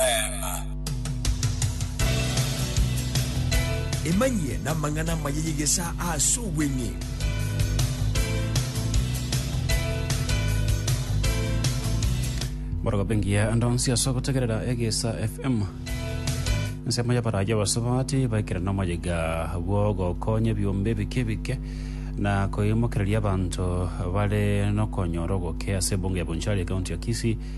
Neema. Emanyie namang'ana amaya y'egesaa ase obweng'e. Borogobe ngiya ande onsi ase ogotegerera Egesa FM. Ensemo y'abaraaia abasubati baikire nomoyiga bw'ogokonya ebiombe ebike ebike na koimokereria abanto bare nokonyora oboke ase ebungo ya Bonchari, ekaunti ya Kisii.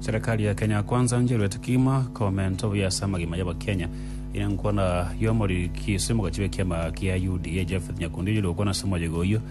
Serekari ya Kenya Kwanza ncheruete kegima komenta obuya ase amagima y'Abakenya. Eye enkwana y'omoriri Kisii mogachibe kiama kia UDA Japheth Nyakundi oyore gokwana ase omoyega oyio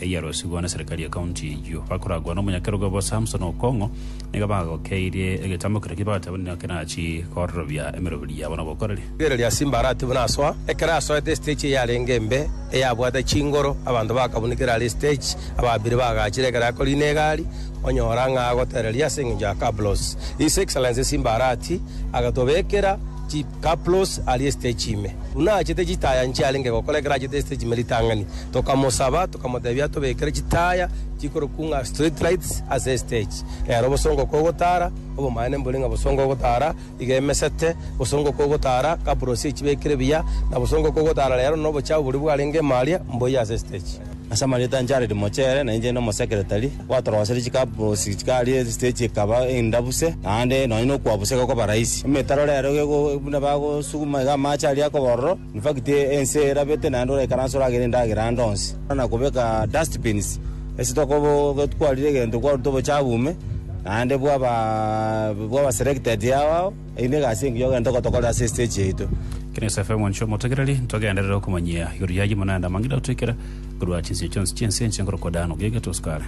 eyiarosigwe na serikali ya county eyio. Bakoragwa na omonyakerogo obo Samson Okong'o, nigo bagokeirie egetambo keria bagateba nigo kerachi kororobia emeroberi yabo na obokoreri. Rigereria ase Imbara atibu nasoa. Ekero asoete estage eyarenge embe, eyabwate chingoro, abanto bakabunikera are estage, ababiri bagachire ekero akorina egari, onyora ng'a agotereria ase engencho ya cabros. His Excellency Simba Arati agatobekera chi. Kaplos aria esiteji ime, buna aachete chitaya inche arenge gokora ekero aachete esiteji ime ritang'ani. Tokamosaba, tokamotebia atobekere chitaya chikorokwa ng'a street lights ase esiteji. Rero obosongo kogotara, obomaene mbore ng'a bosongo ogotara iga emesete, bosongo kogotara, Kaplos echibekire buya, na bosongo kogotara rero nobochafu boria bwarenge ime aria mboyie ase esiteji. ase amarieta anche ariri mochere, na inche inde omosekeretari, gwatoroserie chikabosi chikaria esiteji ekaba endabuse, naende nonye na okwabuseka gokoba rahisi. Emetaro rero geko buna bagosuguma iga amache aria akoba ororo, in fact ense erabete naende oraikaranse oragere endagera ande onsi. Buna kobeka dust bins, ase tokobo gotwarire egento kwaruta obochabu ime, naende bwaba bwaba selected yao ao. Eye nigo egasi engiya ogento gotokore ase esiteji yaito. Kina Yesu afe omonche omotegereri, ntogenderere okomonyia igoro yaye buna naende amang'ina agotoikera korwa chinsinyo chionsi chi'ense enche nkorokwa Dano, gaiga tosi kare.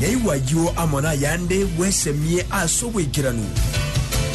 Naigwa ayio amo nayande bwesemie ase obwaikeranu.